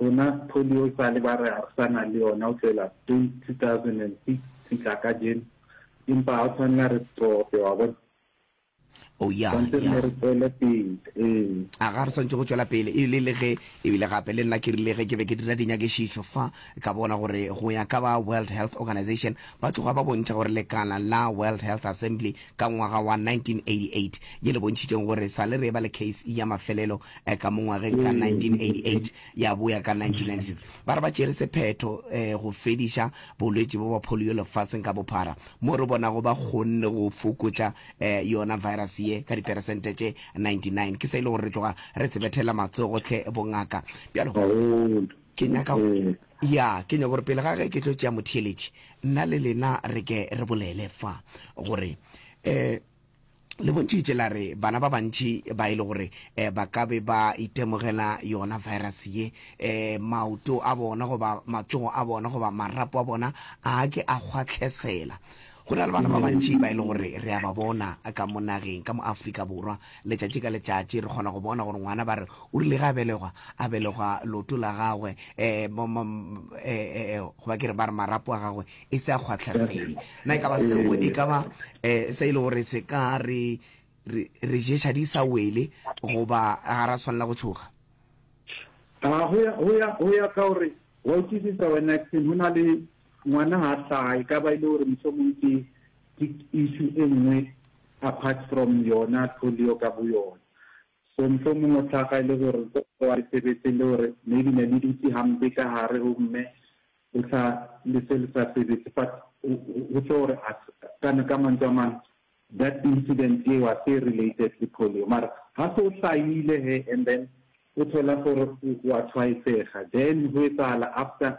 Rena polio sa le ba re ha re sa na le yona ho tlohela 2006 ho fihla kajeno, empa ha o tshwanela re stope, wa bona. Oh, ya, Tshwanetse re ne ya. re tswele pele. Ee. A ga re swantse go tšwela pele e le le ge ebile gape le nna ke rile ge ke be ke dira dinyakešišo fa ka bona gore go ya ka ba World Health Organization ba tloga ba bontšha gore lekala la World Health Assembly ka ngwaga wa 1988 ye le bontšhitšeng gore re sa le re eba le case ya mafelelo eh, ka mo ngwageng ka 1988 ya boya ka 1996 ba re ba tšere sephetho eh, go fediša bolwetši bo ba polio lefatsheng ka bophara mo re bonago ba kgonne go fokotša eh, yona virus ye ka diperesente tše 99 ke se e le gore re tloga re sebethela matsogo tle bongaka bjalo Haholo. Ke nyaka, ya, ke nyaka gore pele ga ge ke tlo tšea motheeletši, nna le lena re ke re bolele fa, gore, um le bontšhitše la re bana ba bantši ba e le gore um ba ka be ba itemogela yona virus ye, um maoto a bona goba matsogo a bona goba marapo a bona a ke a kgwatlhesela. Go na le bana ba bantši ba e le gore re a ba bona ka mo nageng, ka mo Afrika Borwa. Letšatši ka letšatši re kgona go bona gore ngwana ba re o rile ge a belegwa, a belegwa leoto la gagwe goba ke re ba re marapo a gagwe e se a kgwatlhasedi. Na e ka ba seo e ka ba se e le gore se ka re re ješa di sa wele goba ga ra swanela go tšhoga? Go ya ka gore wa utwisisa wena Axin, go na le Ngwana ha a hlaha, e ka ba e le gore mohlomong ke ke issue e nngwe apart from yona polio ka boyona. So mohlomong o hlaga e le gore nkoko wa sebetse le gore maybe ne le dutse hampe ka hare ho mme o sa le se le sa sebetse but ho tlo gore a ka ka mantswe a mang that incident eo a se related le polio mara ha se o hlahile he and then o thola gore wa tshwaetsega then ho etsahala after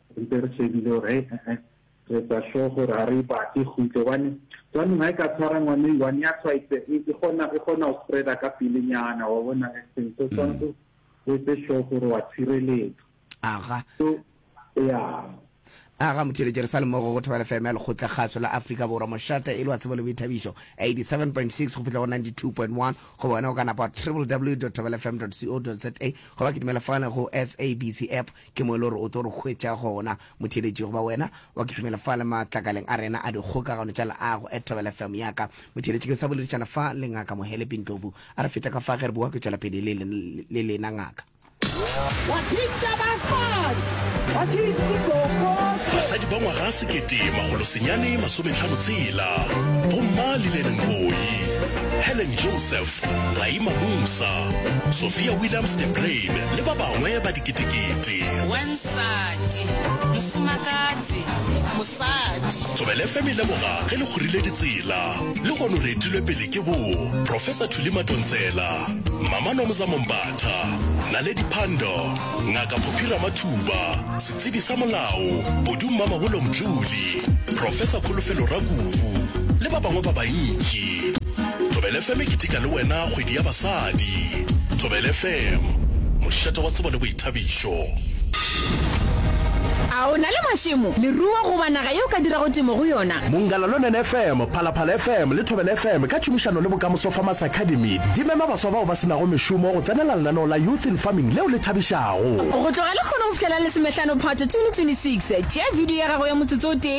Re be re shebile gore hei ee re etsa sure gore ga re e batle e khutle gobane jaanong ga e ka tshwara ngwane one ya tshwaetse e kgona go spreader ka pelenyana wa bona accident so tshwanetse o etse sure gore wa tshireletsa aga so ya aga motheletše re sa le mogo go thobela fm ya lekgotla kgaso la afrika borwa mošata e le wa tsebo le boithabišo 87.6 go fihla go 92.1 go bona o ka napa wa www thobelafm co za goba ke dumela fane go sabc app Ke mo e le gore o tlo re hwetša gona. Motheeletši goba wena wa kitimela fa le matlakaleng a rena a dikgokagano tša leago at Thobela FM ya ka. Motheeletši ke sa boledišana fa le Ngaka Mohelepi Ndlovu. A re feta ka fa ge re bowa ke tšwela pele le le lena Ngaka. Watching Dabafas! Watching Dabafas! Basadi ba ngwaga sekete makgolo senyane masometlhano tshela, Bomma Lillian Ngoyi, Helen Joseph, Laima Musa, Sophia Williams de Bruyn le ba bangwe ba diketekete. Wa nsati, mofumakatsi, mosadi. Thobela FM e leboga ge le kgorile ditsela. Lehono re etilwe pele ke bo Professor Thuli Matontsela, Mama Nomza Mombatha, Naledi Pandor, Ngaka Phophi Ramathuba, Setsebi sa Molao, Bodu Mmamabolo Mdluli, Professor Kholofelo Rakubu le ba bangwe ba bantši. Thobela FM e keteka le wena kgwedi ya basadi. Thobela FM, mošate wa tsebo le boithabišo. A o na le mašemo, leruo goba naga yeo o ka dirago temo go yona? Monggalalonen FM, Phalaphala FM le Thobela FM ka tšhomišano le Bokamoso Farmers Academy di mema baswa bao ba se nago mešomo go tsenela lenaneo la Youth in Farming leo le thabišago. Go tloga lekgono go fihlela Lesomehlano Phatwe 2026, tšea video ya gago ya motsotso o tee,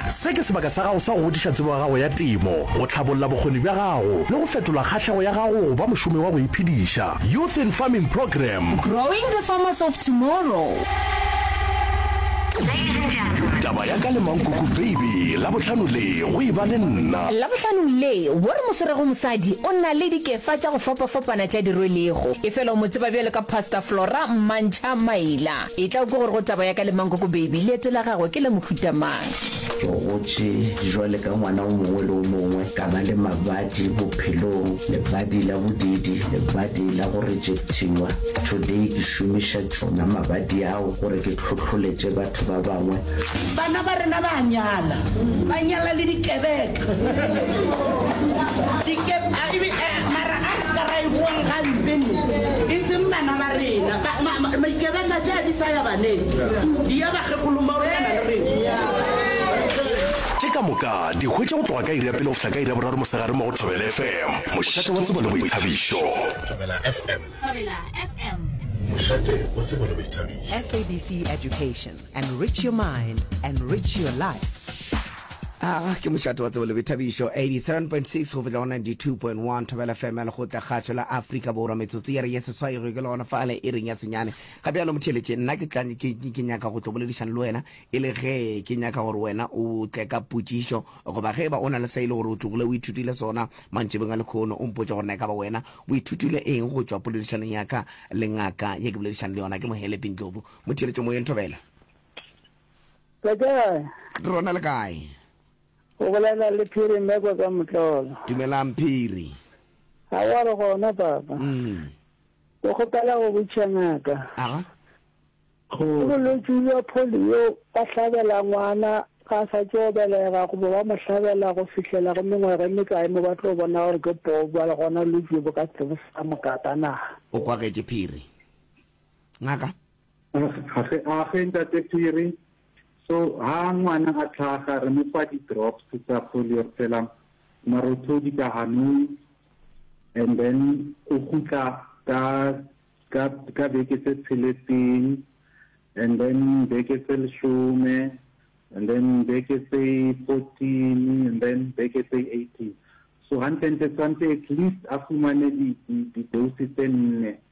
Se ke sebaka sa gago sa go godiša tsebo ya gago ya temo, go tlhabolla bokgoni bja gago le go fetola kgahlego ya gago go ba mošomi wa go iphediša. Youth in Farming Program. Growing the farmers of tomorrow. Ladies and gentlemen. Taba ya ka le Mankoko Baby Labohlano le go e ba le nna. Labohlano le wo re mo swerego mosadi o na le dikefa tša go fapafapana tša di rwelego, efela o mo tseba bjalo ka Pastor Flora Mmantšha Maila. Etla o ke gore go taba ya ka le Mankoko Baby, leeto la gagwe ke la mohuta mang? Ke gotše jwale ka ngwana o mongwe le o mongwe, ka ba le mabadi bophelong, lebadi la bodiidi, lebadi la go rejectiwa. Today ke šomiša tšona mabadi ao gore ke hlohloletše batho ba bangwe. Bana ba rena ba a nyala, ba nyala le dikebeka. Tše ka moka di hwetša go tloga ka iri ya pele go fihla ka iri ya boraro mosegareng mo go Thobela FM, mošate wa tsebo le boithabišo. Thobela FM. Thobela FM. Mošate wa tsebo le boithabišo. SABC Education. Enrich your mind, enrich your life. Ah, ke mošate wa tsebo le boithabišo 87.6 go fihla go 92.1 thobela fm ya lekgotla kgašo la afrika borwa metsotso ya re ya seswai go ikela gona fale e reng ya senyane ga bjalo motheletše nna ke tla- ke- ke- ke nyaka go tlo boledišana le wena e le ge ke nyaka gore wena o tle ka potšišo goba ge e ba o na le sa e le gore o tlogile o ithutile sona mantšebeng a lekgono o mpotsa gore na e ka ba wena o ithutile eng go tšwa poledišanong ya ka le ngaka ye ke boledišana le yona ke mohele pindlovu mo theeletše moyeng thobela Ka kae? re rona le kae O bolela le Phiri Mekwa ka Motlolo. dumelang phiri Ga wa re gona papa. mm. Ke kgopela go botša ngaka. aga Ke bolwetši bja polio ba hlabela ngwana ga a sa tšo belega goba ba mo hlabela go fihlela go mengwaga e mekae mo ba tlo bona gore ke poo ba le gona bolwetši bo ka tsebo sa mokaka na. o kwagetše phiri Ngaka. Age, Ntate Phiri, so ha ngwana a tlhaga re mo fa di-drops tsa polio re tshela marothodi ka hanong and then o gutla ka ka ka beke tse tsheletseng and then beke tse leshome and then beke tse fourteen and then beke tse eighteen so gantlentle tshwanetse at least a fumane di-dose tse nne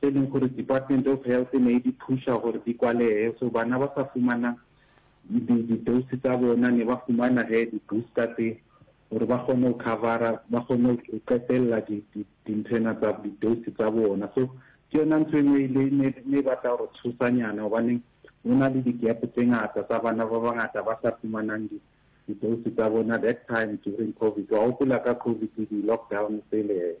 tše e leng gore Department of Health e ne e di phuša gore di kwalege, so bana ba sa fumana di-dose tsa bona ne ba fumana ge di-booster tse gore ba kgone go covera, ba kgone go qetelela dinthwena tsa di-dose tsa bona. So ke yona ntho e nngwe e ne e batla gore tshosanyana gobaneng go na le di-gap tse ngata tsa bana ba bangata ba sa fumanang di di-dose tsa bona that time during COVID. Wa gopola ka COVID le di-lockdown tsele hee.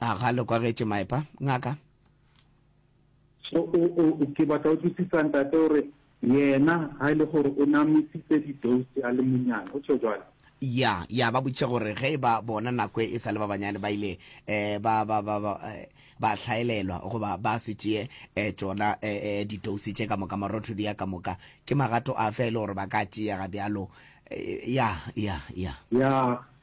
A ga le kwagetše maepa, ngaka? So, o, o, o, ke batla o tlisisa, ntate, o re, Yena, ga e le gore o ne a misitse didouse a le monnyane, go tšho bjalo. Ya, ya ba botšiša gore ge e ba bona nako e sa le ba banyane ba ile, e, ba, ba, ba, ba, e, ba hlaelelwa, goba ba se tšee, e, tšona, e, e, didouse tše ka moka, marothodi a ka moka, ke magato afe a e le gore ba ka a tšea ga bjalo? E, ya, ya, ya. Ya,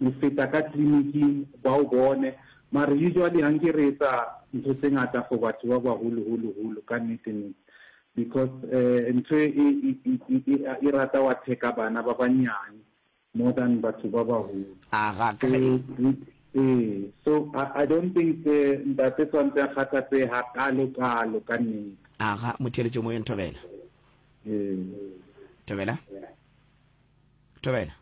Re feta ka kliniking ba o bone. Mara usually a nke re etsa ntho tse ngata for batho ba baholo holo holo ka nnete nnete. Because eh ntho e e rata wa attack-a bana ba banyane more than batho ba baholo. Ee so I don't think ntate tshwantse a kgathatsehe hakalo kalo ka nnete. Aga, Motheeletšomoyeng Thobela. Ee. Thobela? tobela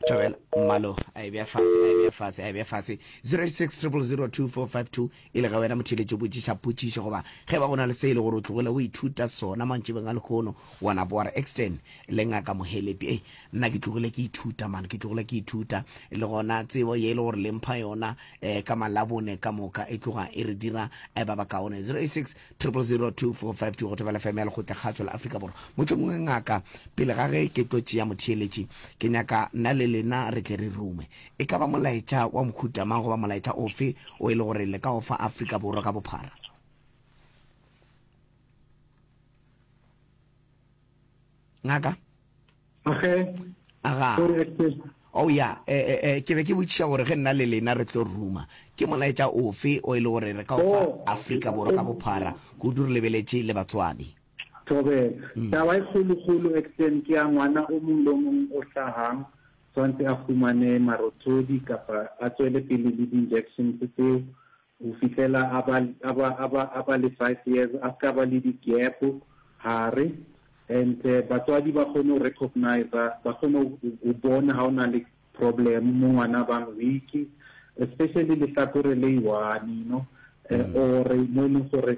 tobela mmalo a e bea fase a e bea fase a e bea fase 06000245 e le ga wena motheletše o botšiša potšišo goba ge ba go na le se e le gore o tlogile o ithuta sona mantšibeng a lekgono wa na boara extern le ngaka mohelepi ei nna ke tlogile ke ithuta mane ke tlogile ke ithuta le gona tsebo ye e le gore le mpha yona um ka malabone ka moka e tloga e re dira eh, ba bakaone 06 000245 go thobela fm ya lekgotle kgatšo la afrika borwa mohlomongwe ngaka pele ga ge ke tlo tšea motheeletši ke nyaka nna le lena re tle re rume e ka ba molaetša wa mokhutamang goba molaetša ofe o e le gore le ka o fa afrika borwa ka bophara ngaka age aga o oh, ya eh, eh, eh, ke be ke botšiša gore ge nna le lena re tlo ruma ke molaetša ofe o e le gore re ka ofa oh. afrika borwa ka bophara kudu re lebeletše le batswadi tobe mm. taba e kgolokgolo exten ke ya ngwana o mong le o mong o hlagang tshwanetse a fumane marothodi kapa a tswele pele le di-injections tseo go fihlela a ba, a ba, a ba, a ba le five years, a se ka ba le di gap gare, and batswadi ba kgone go recognize, ba kgone go bona ga o na le problem mo ngwana a bang weak, especially lehlakore le i-one, you know, or mo e leng gore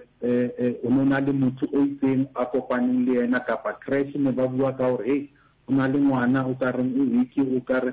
o no na le motho o itseng a kopaneng le yena, kapa creche ne ba bua ka gore, hey, go na le ngwana o ka reng o weak, o ka re,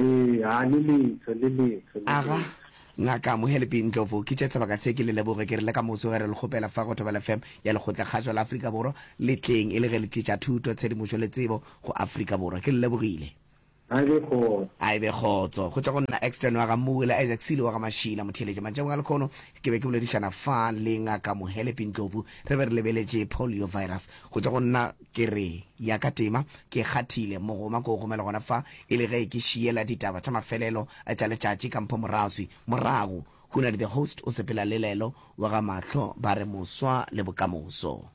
Ee, a le letho, le letho, le Aga, letho. Ngaka Mohelebhi Ndlovu, ke tše sebaka se ke le leboge ke re le ka moso ge re le kgopela fa go Thobela FM ya Lekgotlakgašo la Afrika Borwa le tleng e le ge le tliša thuto, tshedimošo le tsebo go Afrika Borwa. Ke le lebogile. A e be kgotso. A e be kgotso. Go tšwa go nna Exton wa ga Mmuwe le Isaac Silo wa ga Mashila Motheeletša. Mantšhabong a lekhono ke be ke boledišana fa le Ngaka Mohelebhi Ndlovu re be re lebeletše poliovirus. Go tšwa go nna ke re ya ka tema Ke kgathile, mogoma ko o gomela gona fa, e le ge ke šiela ditaba tša mafelelo a tša letšatši ka mpho moraswi. Morago, Hunadi the host o sepela le lelo wa ga Mahlo ba re moswa le bokamoso.